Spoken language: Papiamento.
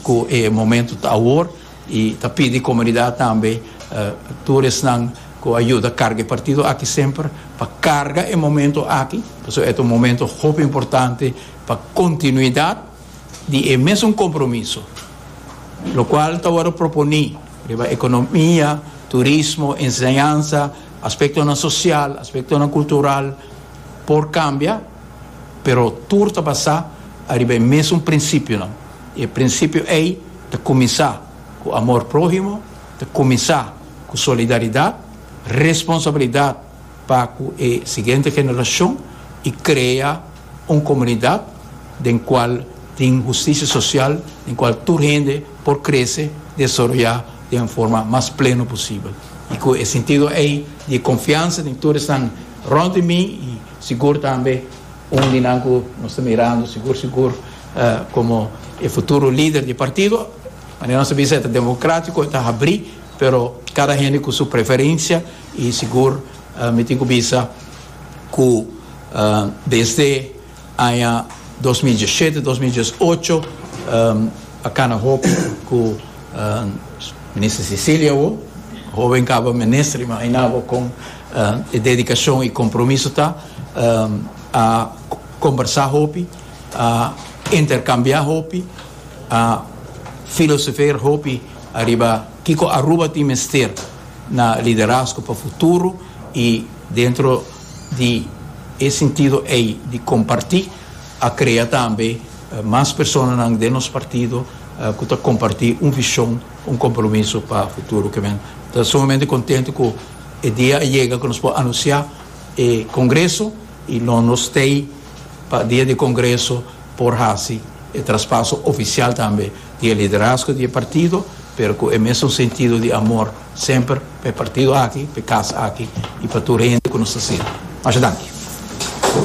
cu e momento ta awor y ta pidi comunidad tambe tur esnan cu a yuda carga e partido aki semper pa carga e momento aki pasobra e ta un momento hopi importante pa continuidad di e mesun compromiso locual ta wordo proponi riba economia, turismo, enseñansa, aspectonan social, aspectonan cultural por cambia. pero tur ta basá ariba e mésun prinsipionan. E prinsipio ei ta kuminsá ku amor próhimo, ta kuminsá ku solidaridat, responsabilidat pa ku e siguiente generashon i krea un komunidat den kual tin hustisia sosial, den kual tur hende por krese, desaroyá den un forma mas pleno posibel. I ku e sintido ei di konfiansa den tur esnan rònt di mi, Sigur tambe un di nan ku nos ta mirando sigur sigur komo e futuro lider di partido. Manera nos ta bisa e ta demokratiko, e ta habrí, pero kada hende ku su preferensia i sigur mi tin ku bisa ku desde aña dos mil diesshete, dos mil dies ocho a kana hopi ku Minister Cecilia Wo, hoben kaba minister i mahinabo kon E dedikashon i kompromiso ta, a kombersá hopi, a interkambiá hopi, a filosofeer hopi ariba kiko Aruba tin mester na liderazgo pa futuro i dentro di e sintido ei di kompartí a krea tambe mas personanan den nos partido ku ta kompartí un vishon, un kompromiso pa futuro. Ke men ta sumamente kontento ku. E dia a yega ku nos por anunsiá e kongreso i lo nos t'ei pa dia di e kongreso por hasi e traspaso ofisial tambe di e liderazgo di e partido, pero ku e mesun sentido di amor semper pa e partido aki, pa e kas aki i pa tur hende ku nos ta sirbi. Masha danki.